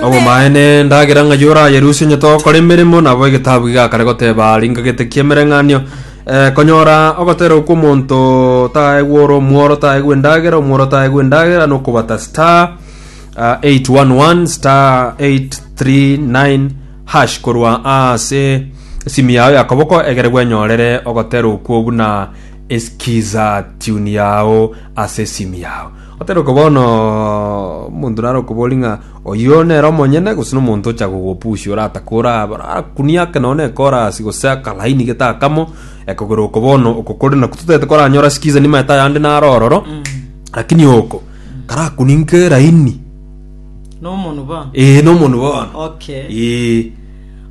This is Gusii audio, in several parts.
Obomaene, endagera ng'a yorayerusie onye togokora emeremo, nabo egetabu iga kare goteba, Ringa gete ki'emereng'anio. Eh, konyora ogotera okwo omonto taegwe ore omworo taegwe endagera, omworo taegwe endagera, nokobata star ah, 811 star 839 hash korwa ase esimu yao ya koboko egere gwenyorere ogotera okwo buna eskiza tune yao ase esimu yao Oteroke bono, omonto nare okobori ng'a oyio nere omonyene, gose nomonto ocha gogopusia oratake ora abare akunie ake nonya nekorasi gose akalaini gete akamo, ekogera oko bono oko kore naku totaete koranyora sikiza nimaete ayande nare ororo, lakini oko karakunie nke laini. Nomonu bono. Ee nomonu bono. Okay. Ee.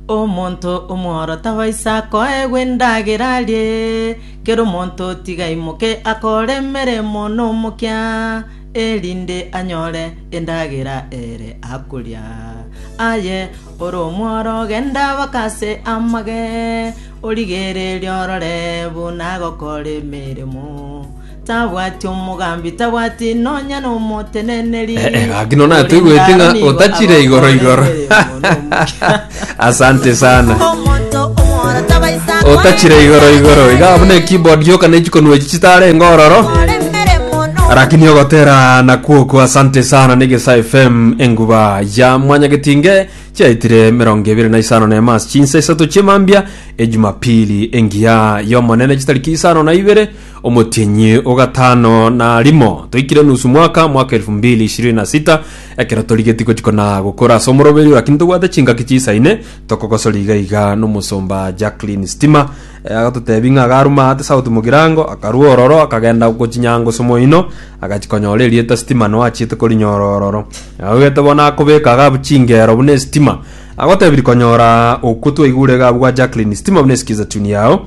Omonto omworo tabaisa koegwa endagera arie Kera omonto tiga aimoke akore emeremo nomokia, erinde anyore endagera ere akoria. Aye ore omworo, genda baka ase amage, origererie orore buna agokora emeremo. Tabwati omogambi, tabwati nonya nomoteneneri. Eh, eh, gaki nonatoigwete ng'a otachire igoro igoro. asante sana otachire igoro igoro iga buna keyboard yoka nechikonwa echi chitare ngororo lakini ogotera nakwoko asante sana negesa fm enguba ya mwanyagetinge chiaitire mirongo ebere na isano na emas chinsa isato chiemambia ejumapili engiya yomonene chitariki isano na ibere omotienyi ogatano na rimo toikire nusu mwaka mwaka 2026 Ekero torigetie gochia kona gokora ase omoroberio lakini tobwate chingaki chiisaine, tokogosori iga iga n'omosomba Jacqueline Stima. Eh, Agatotebi ng'a agaruma ate sauti mogirango, akarua ororo, akagenda gochinyango ase omoino, agachia konyora erieta Stima nao achiete korinyora ororo. Aogete bono akobeka iga abwo chingero buna estima. Agotebi rikonyora okwo twaigure iga abwo gwa Jacqueline Stima buna esikiza tune yao.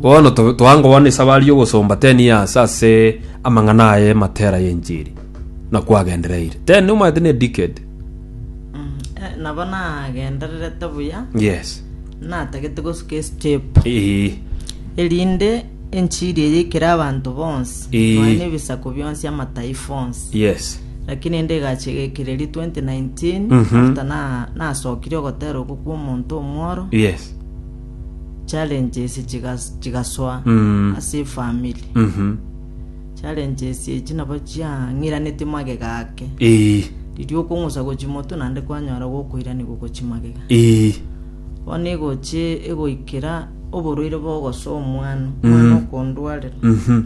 Bono to- toankobana esabari y'ogosomba 10 years ase amang'ana aye matera y'enchiri, na kwagendereire. 10 omanyete ne decade. Eh, nabo nagendererete buya Yes. natagete gosuka estep Eeh. erinde enchiri eye ikere abanto bonsi Ee. nonya na ebisaku bionsi amataifa onsi Yes. lakini ende egacha egekereri 2019 Mhm. after na- nasokire ogotera okwo kwa omonto omworo Yes. challenges chigas- chigasoa Mm. ase efamili Mhm. challenges echi nabo chiang'iraneti magega ake Ii. riria okong'usa gochia moto naende kwanyora gokoirani gogochia magega Ii. bono egochi egoikera oborwaire bogosoa omwana omwana Mm. okondwarera Mhm.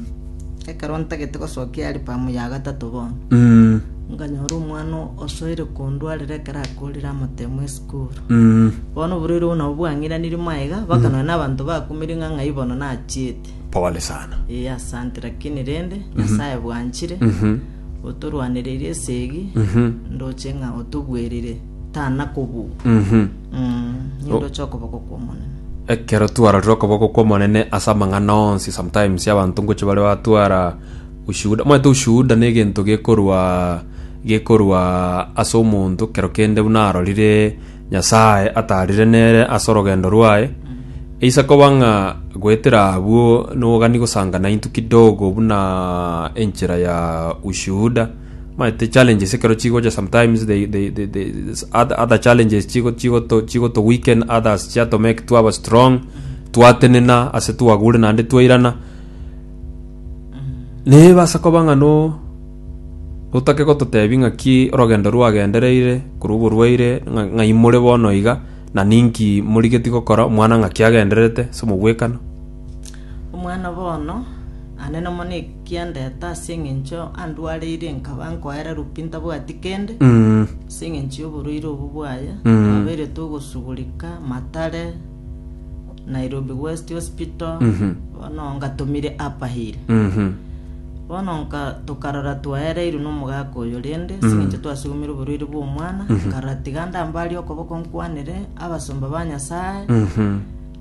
ekero ntagete gosokia album ya gatato bono Mm. nkanyora omwana osoire kondwarera ekero akorire amatemo ase Kobua. Mm. Bono oborwaire obwo nabwo bwang'iranirie magega, mpaka nonya na abanto bakumire ng'a ng'ai bono nachiete. Pole sana. Ee, asante, lakini rende Nyasaye bwanchire, Mhm. otorwanereirie esegi, Mhm. ndoche ng'a otobwerire tana kobua. Mhm. Mm, nigo ndoche okoboko kw'Omonene. ekero twarorire okoboko kw'omonene ase amang'ana onsi sometimes abanto ngochia bare batwara Ushuhuda, omanyete ushuhuda negento gekorwa gekorwa ase omonto kero kende buna arorire Nyasaye atarire nere ase orogendo rwaye. Eisa koba ng'a goetera abwo nogani gosanga naintwe kidogo buna enchera ya ushuhuda. Omanyete challenges ekero chigocha sometimes they they they they other other challenges chigo chigoto chigoto weaken others chiato make twaba strong twatenena ase twagure naende twairana Nebasa koba ng'a no otake gototebia ng'aki orogendo rwagendereire korwa oborwaire ng'a ng'ai more bono iga, na ninki morigeti gokora, omwana ng'aki agendererete ase omogwekano. Omwana bono, ane nomo na ekia ndete ase eng'encho andwareire nkaba nkoererwa pi ntabwati kende, Mm. ase eng'encho y'oborwaire obwo bwaye, Mm. twabairetwe ogosugurika matare, Nairobi West Hospital, Mhm. bono ngatomire Upperhill. Mhm. Bono nka tokarora twaereirwe n'omogaka oyo rende, Mm. sing'encho twasugumirwe oborwaire bw'omwana, Mhm. nkarora tiga ndambarie okoboko nkwanere abasomba ba Nyasae, Mhm.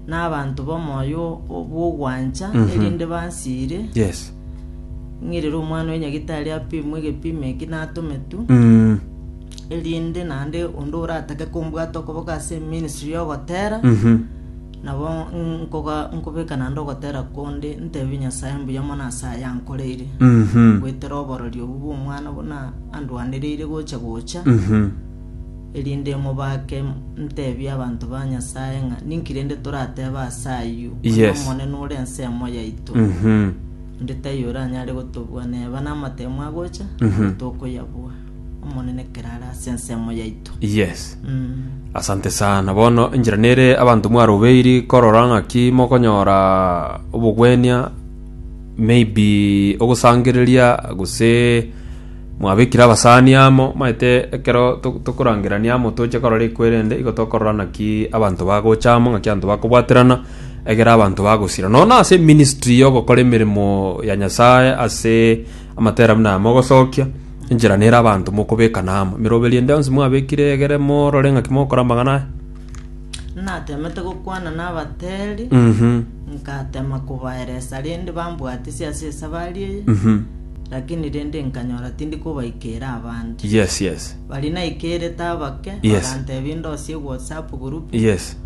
n'abanto b'omoyo bw'ogwancha, Mhm. erinde bansiire, Yes. ng'irere omwana oyo nyagitari apimwe egepimo eki natometwe, Mm. erinde naende onde oratake kombwata okoboko ase eministry y'ogotera Mhm. nabo nkoga- nkobeka naende ogotera konde ntebi nyasae mbuya mono ase ayankoreire Mhm. gwetera oborori obwo bw'omwana buna andwanereire gocha gocha Mhm. erinde mobake ntebi abanto ba nyasae ng'a ninki rende torateba ase ayio Onye Yes. omonene ore ensemo yaito Mhm. onde taiyo oranyare gotobua neba namatemo agocha Mhm. tokoyabua Omonene ekero are ase ensemo yaito. Yes. Mm. Asante sana. Bono enchera nere abanto mwarobeiri korora ng'aki mokonyora obogwenia maybe ogosangereria gose mwabekire abasani amo maete ekero to- tokorangerania amo toche korora ekwerende igo tokorora naki abanto bagocha amo ng'aki abanto bakobwaterana egere abanto bagosira nono ase ministry yogokora emeremo ya Nyasaye ase Amatera buna aya mogosokia, enchera nere abanto mokobekana amo. Emeroberio ende yonsi mwabekire egere morore ng'aki mogokora amang'ana aya. Natemete gokwana nabateeri, Mhm. ngatema kobaeresa rende bambwatisi ase esabari eye, Mhm. lakini rende nkanyora tindi kobaikeera abande. Yes, yes. Baria naikeerete abake, Yes. bagantebia ndosie ewhatsapp group, Yes.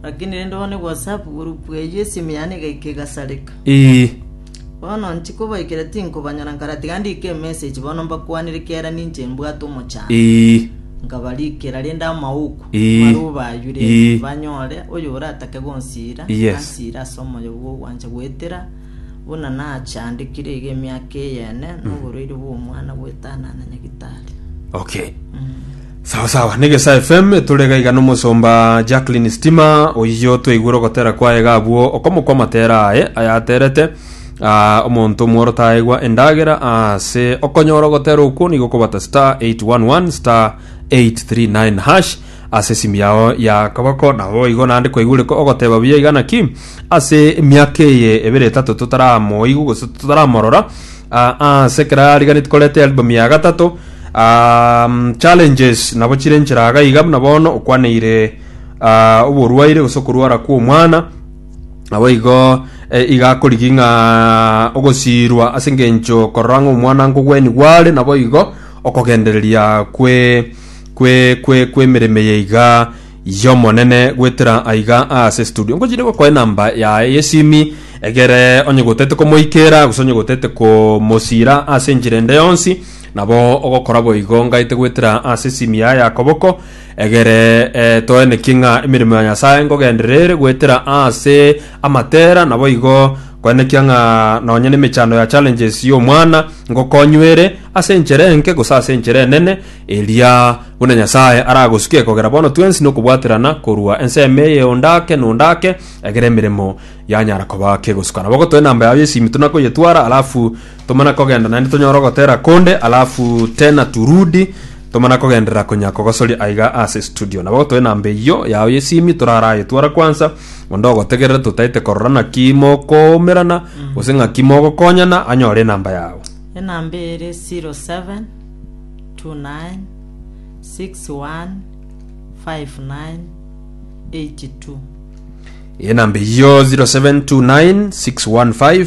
lakini rende bono ewhatsapp group eyio esimi yane egaika egasareka. Ii. Bono nchikobaikera tinkobanyora nkara tiga ndike emessage bono mbakwanire kiagera ninche mbwate omochando. Ee. Nkabarikera rende amauku Ee. marwo bayure Ee. banyore oyo oratake gonsira Yes. ansire ase omoyo bw'ogwancha goetera buna nachandekire iga emiaka eyene noborwaire bw'omwana bw'etana na nyagitari. Okay. Sawa sawa, Negesa FM tore iga iga n'omosomba Jacqueline Stima oyio twaigure ogotera kwaye iga abwo okomokwa amatera aye ayaterete ah, omonto omworo taegwa endagera ase okonyora ogotera okwo nigo okobata star 811 star 839 hash ase esimu yao ya kaboko nabo igo nande kwaigure ko ogoteba buya iga naki ase emiaka eye ebere etato totaramoigwa gose totaramorora ah, ase ekero ariganeti koreta album ya gatato Um, challenges nabo chire enchera aga iga buna bono okwaneire ah, oborwaire gose okorwara kw'omwana nabo igo eh, iga akorigi ng'a ogosiirwa ase engencho korora ng'a omwana nkogweni gware nabo igo okogendereria kwe kwe kwe kw'emereme ye iga y'omonene gwetera aiga ase studio nkochire gokoe namba yaye yesimi egere onye gotete komoikera gose onye gotete komosira ase enchera ende yonsi Nabo ogokora boigo ngaete gwetera ase esimia y'akoboko egere eh, toenekie ng'a emeremo ya Nyasae ngogenderera ere gwetera ase amatera naboigo koenekia ng'a nonye nemechando ya challenges y'omwana ngokonywere ase enchera enke gose ase enchera enene eria buna Nyasae aragosuke kogera bono twensi nokobwaterana korwa ensemo eye ondake nondake egere emeremo yanyara koba kegosukana bogo toe namba yao y'esimi tonakoyetwara alafu Tomana kogenda naende tonyore ogotera konde alafu tena turudi tomana kogenderera konya kogosoria aiga ase studio nabo gotoe namba eyio yao yesimi toraraye twara kwansa onde ogotegerere totaete korora naki mokoumerana gose ng'aki mogokonyana anyore enamba yao enamba ere 07 29 61 59 82 enamba eyio 0729615982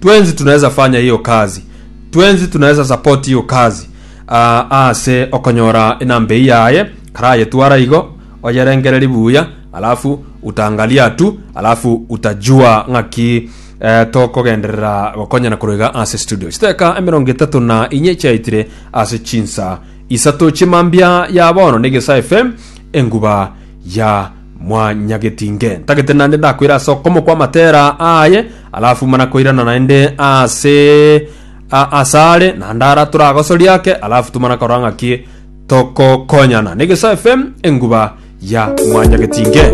Twensi tunaweza fanya hiyo kazi, twensi tunaweza support hiyo kazi ah, ase okonyora enamba eyi yaye karayetwara igo oyerengereri buya alafu utaangalia tu alafu utajua ng'aki eh, tokogenderera gokonyana koroiga ase studio chiteka emerongo etato na inye chiaitire ase chinsa isato chimambia ya bono negesa fm enguba ya mwanyagetinge ntagete nande ndakwira ase okomo kwa matera aye Alafu mana koirana naende ase a- asare naende ara turagosoria ake alafu tumana korora ng'aki tokokonyana negesae fm enguba ya mwanyagetinge